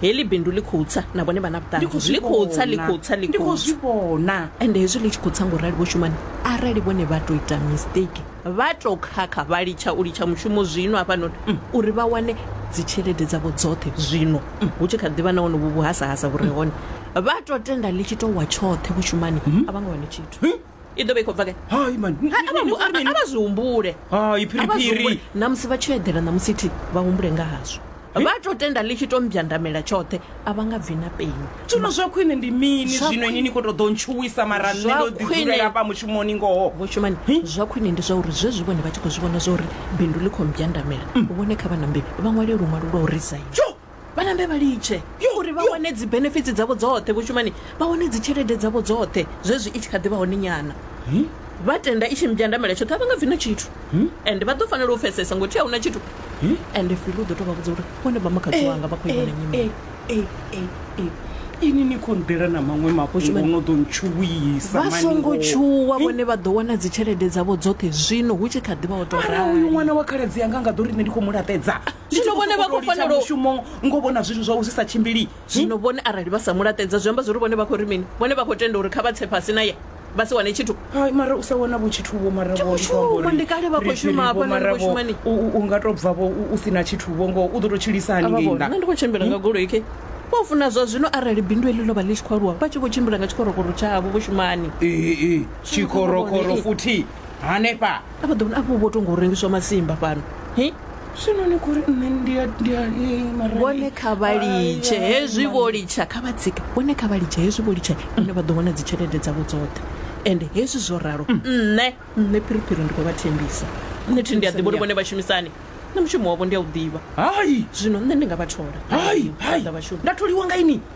heḽi bindu ḽi khou tsa na vhone vha na Ndi khou vhuṱanzi zwi ḽi khou tsa ḽi vhona. khou tsa ḽi Ndi khou khou zwi tsa vhona ende hezwi ḽi tshi khou tsa ngo rali vho shumani arali vhone vha tou ita mistake vha tou khakha vha litsha u litsha mushumo zwino hafhanoni uri vha wane dzitshelede dzavho dzoṱhe zwino hu tshi kha ḓivha na honovhu vhuhasahasa vhu re hone vha tou tenda ḽi tshi tou wa tshoṱhe vhushumani a vha nga wane tshithu i ḓo vha i khou bva gai hai mani Ni- Ha- ni- a vha ni- hu- a- ni- a- a vha zwi humbule hai A vha zwi phiriphiri humbule. na musi vha tshi eḓela na musi thi vha humbule nga hazwo vha to tenda ḽi tshi to mbyandamela tshoṱhe a vha nga bvi na peni zwino zwa khwine ndi mini Zwa zwino ini khwine- ni khou tou ḓo ntshuwisa mara nṋe Zwa ndo ḓi khwine- dzulela hafha mushumoni ngoho vho shumani zwa khwine ndi zwa uri zwezwi vhone vha tshi khou zwi vhona zwa uri bindu ḽi khou mbyandamela vhone kha vha nambe vha ṅwale luṅwalo lwa u resign jo vhanambe vha litshe uri vha wane dzi benefits dzavho dzoṱhe vho shumani vha wane dzi tshelede dzavho dzoṱhe zwezwi i tshi kha ḓi vha hone nyana vha tenda i tshi mbyandamela tshoṱhe a vha nga bvi na tshithu and vha ḓo fanela u pfesesa ngo thi a huna tshithu and fili u ḓo tou vha vhudza uri vhone vha makhadzi wanga vha khou ivhona nyimele ini ni khou nḓela na maṅwe mafho zwino no ḓo ntshuwisa vha songo tshuwa vhone vha ḓo wana dzi tshelede dzavho dzoṱhe zwino hu tshi kha ḓi vha o tou rali uyu ṅwana wa khaladzi yanga nga ḓo ri nṋe ndi khou mu laṱedza zwino vhone vha khou fanela mushumo ngo vhona zwithu zwa u zwi sa tshimbili zwino vhone arali vha sa mulaṱedza zwi amba zwi uri vhone vha khou ri mini vhone vha khou tenda uri kha vha tse fhasi na ye vha si wane tshithu hai mara u sa wana vho tshithu vho mara vho shuma ndi kale vha khou shuma hafha na khou shuma ni u nga to bva vho u si na tshithu vho ngo u ḓo to tshilisa hani ngei nda ndi khou tshimbila nga goloi ke vho funa zwa zwino arali bindu eḽi ḽo vha ḽi tshi khou aluwa vha tshi vho tshimbila nga tshikorokoro tshavho vho shumani ee tshikorokoro futhi hanefha a vha ḓo vhona afho vho to ngo rengiswa masimba fhano hi zwino ni khori nṋe ndi a- ndi a- ni mara ni- vhone kha vha litshe Ai, hezwi ai, vho litsha kha vha tsike vhone kha vha litshe hezwi vho litsha vhone vha ḓo wana dzitshelede dzavho dzoṱhe ende hezwi zwo ralo nṋe nṋe phiriphiri ndi khou vha thembisa nṋe thi ndi a ḓivha uri vhone vha shumisani na mushumo wavho ndi a u ḓivha hai zwino nṋe ndi nga vha thola hai hai Ṱoḓa vhashumi nda tholiwa nga ini